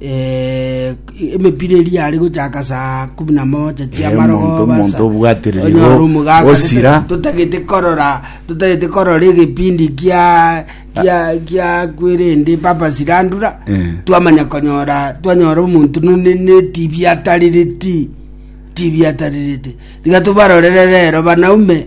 eh, emepira eri yari gochaka saa kumi na moja Eh, chiamarogo omonto- basa. omonto obwatiririgwo, Onyore omogaka, osira. tete- totagete korora totagete korora egepindi kia kia kia kwerende papa sirandura Eh. twamanya konyora twanyora omonto none ne tv atarireti tv atarirete tiga tobarorere rero banaume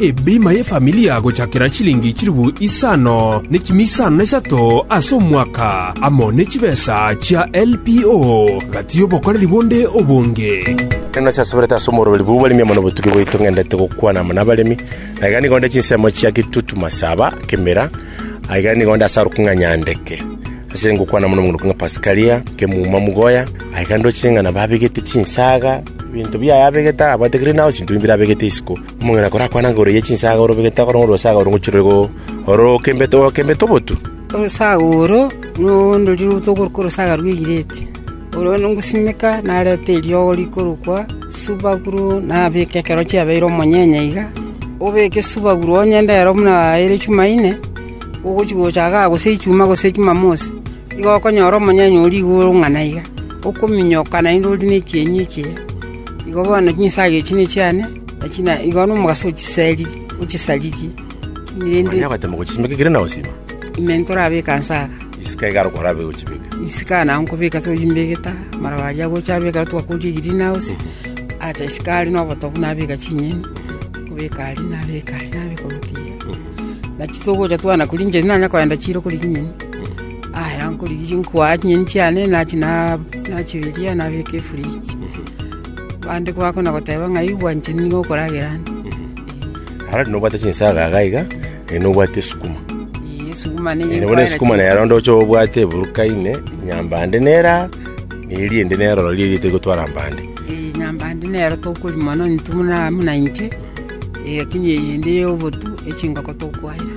Ebima y'efamilia gochakera chilingi chilifu isano ne chimi isano na isato ase omwaka, amo ne chibesa chia LPO, gati y'obokoreri bonde obonge. Ekero nase asoberete ase omoroberi bw'obo baremi amo nobotugi bwaito ng'endete gokwana amo nabaremi, na iga nigo nde chinsemo chia gitutu masaba kemera, aiga nigo nde ase aruku ng'a Nyandeke, ase ngokwana amo nomoguruku ng'a Pasikaria, Kemuma Mugoya, aiga ndoche ng'a nabo abegete chinsaga, ebinto biaye abegete abwate green house, ebinto binde abegete isiko. Omong'ina korakwane anguru ye chinsaga ore obegete agoro ng'a orwosaga oro ngochire rore gokembete, gokembete obotu. Orosaga oro nondorire otogoruka orosaga rw'eireti. Oro ngosimeka narete eriogo rikorokwa subaguru nabeke ekero chiabeire omonyenye iga, obeke subaguru onye ndero buna ere Jumaine, ogochia gocha igaa gose Ijumaa gose Jumamosi, nigo okonyora omonyenye oria iga orong'ana iga, okominyoka naende ore nechienyi echiya. Igo bono chinsaga echi nechiane. Naki naigo nomogaso o chiseri, o chisariri, rende Onye agoetema gochisimeka ekere na osima, ime ntorabeka inse aka. isiko iga arokora abe gochibeka. Isiko aya nabo nkobeka torimbegete amaraba aria gocha abeka aria twakoria green house. Acha isiko aria na obotobu nabeka chinyeni, nkobeka aria nabeka aria nabeka obotiga. Naki togocha twana koria inche nanya kogenda chiro korigia nyeni. Aya nkorigia nkoa chinyeni chiane nachi na- nachibiria nabeka efridge. Abande bakona goteba ng'a igwa inche nigo okoragera ande. Ara nobwate chinsaga iga iga, eh, nobwate esukuma. Ii, esuguma ne Eh, bono esukuma nero onde ocha obwate eburuka ime, nyambande nera, na eria ende nero roria eria tigotwara mbande. Ii, nyambande nero tokori mono intwe buna buna inche, ii, lakini eyende ya obotu, echingoko tokwaera.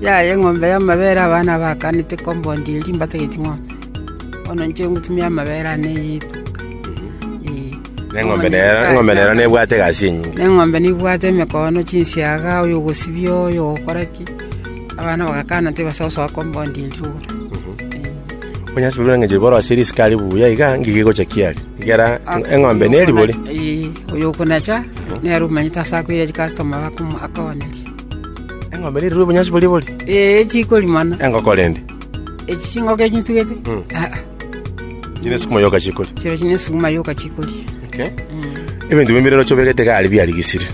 Yaya eng'ombe y'amabere abana baakanete compound eria mbatageti ng'ombe, bono inche ngotumia amabere ane eyitu. Na eng'ombe nera- eng'ombe nera nebwate egasi enyinge. Na eng'ombe nebwate emekono, chinsiaga, oyo ogosibia, oyo ogokora ki, abana bagakana tibasoa soa compound eria igoro. Onyase korwa eng'encho borosie risiko aria buya iga, ng'igi egocha kiari. Egera eng'ombe neribori. Ee, oyo okonacha, nere omanyete ase akoira chikastoma bakomo- akogoneria. Eng'ombe nerue obonyansi boria bore? Ee, chikorimana. Engoko rende? Echi chingoko echi nitugete? Mm. Ah, ah, Inche nesukuma yoka chikore. chero chine sukuma yoka chikoria. Okay. Ebinto bimbe rero chobegete gari biarigisire.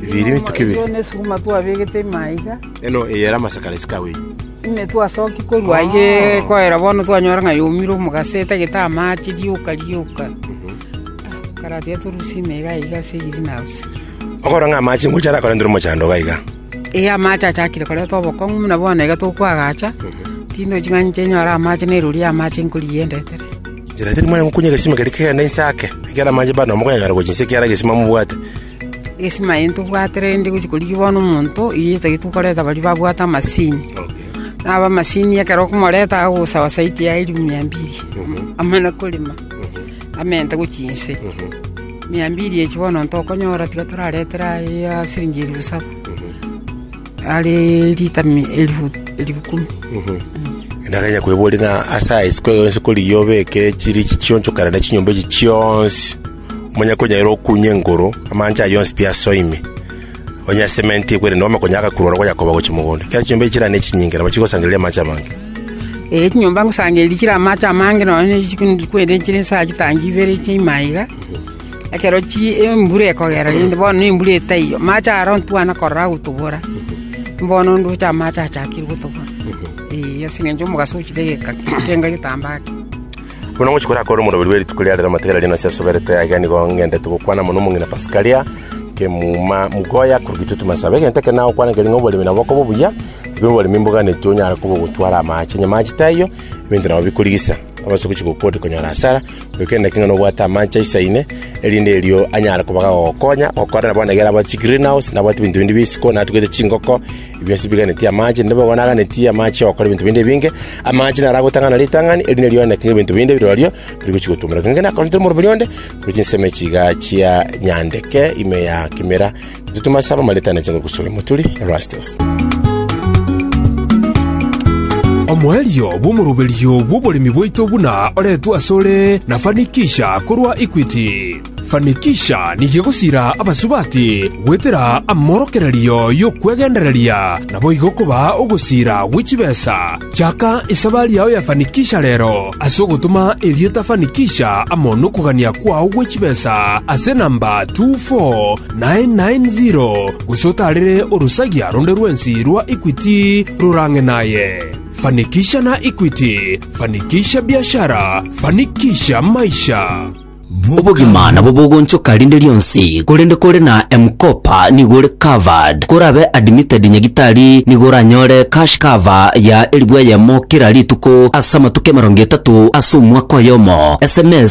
Biri mituki biri. Eyo nesukuma twabegete maiga, Eno eyera amasakara esikawe. ime twasoki korwa aye koera bono twanyora ng'a yomire omogase etagete amache rioka rioka. Ah, Karatiga torusie imeiga iga ase green house. Okorora ng'a amaache ngochia arakorentire omochando iga iga. Ee, amaache achakire korenta obokong'u buna bono iga tokwagacha, tinde ching'ani inche nyore amaache na erori y'amaache nkorigia endetere. Inchera teri mwanya gokunya egesima keria kegende inse ake, ekiagera amaache bado mokonyanyora gochia inse ekiara egesima mobwate. Egesima eye ntobwate rende gochia korigia bono omonto, eyio etagete korenta baria babwate amasini. Nabo amasini ekero okomoreta agosawa saiti yaye ria mia mbiri, amana korema. amente gochia inse. Mia mbiri echio bono ntokonyora tiga toraretere aye ya siringi elifu saba, are lita mi- elifu elifu kumi. Naganya kwebori ng'a ase aya isiko eyo yonsi kori iyo obeke chirichi chionchokana na chinyomba echi chionsi, omonyako onyaire okunye engoro, amaancha aye yonsi pi asoime. Onye ensemo eye ntekwete na omokonyi agakurwa ore goyakoba gochia mogondo, ekiagera chinyomba echi chirane chinyinge nabo chigosangereria amache amange. Ee, chinyomba ngosangereria chire amache amange nonya ne chituko ne chituko ere chire esaa chitangi ibere chia ime aye iga, ekero chi embura ekogera rende bono na embura etaiyo, amache aro ntwana korora agotobora, mbono ndoche amache achakire gotobora, ee, ase eng'encho omogaso ochire geka- genga getambaa kei. Buna ngochia koira akore omoroberi bwe rituko ria rero amatigari aria nase asoberete aiga nigo ng'endete gokwana mono omong'ina Pasikaria kemuma mugoya korogitwe timasabe egento ekero nagokwana nkeri ng'a oboremi nabo okoba obuya obe oboremi mboganeti onyare koba ogotwara amache nyama ache taiyo ebinto nabo bikorigisa obase gochi gokode konyora asara goika endaki ng'a nobwate amache aisaine erinde erio anyare koba gagokonya okorera bono egere abwate chigreen house nabwate ebinto binde bia isiko natugete chingoko Bionsi biganetie amache, naende bono aganetie amache ogokora ebinto binde ebinge. Amache naro agotang'ana ritang'ani, erinde rioneke ng'a ebinto binde birorio bigochia gotumorekana. Ng'ende nakorire tore morobori onde, korwa chinsemo chiiga chia nyandeke ime ya kemera, totuma ase abamareti ane chinguru gosura emoturi. Erastus. Omoerio bw'omoroberio bw'oboremi bwaito buna oretwe asore na Fanikisha korwa Equity. Fanikisha nigo egosiira abasubati goetera amorokererio y'okwegendereria, naboigo kobaa ogosiira gwe chibesa. Chaka esabari yao ya Fanikisha rero ase ogotoma erieta Fanikisha amo nokogania kwao gwe chibesa ase namba 24990 gose otaarere orosagia ronde rwensi rwa Equity rorang'e naye. Fanikisha na Equity, Fanikisha Biashara, Fanikisha Maisha. Bw'obogima nabwo bogonchoka rinde rionsi, korende kore na M-Kopa nigo ore covered. Korabe admitted nyagitari nigo oranyore cash cover ya eribu eyemo kera rituko ase amatuko emerongo etato ase omwaka oyomo. Sms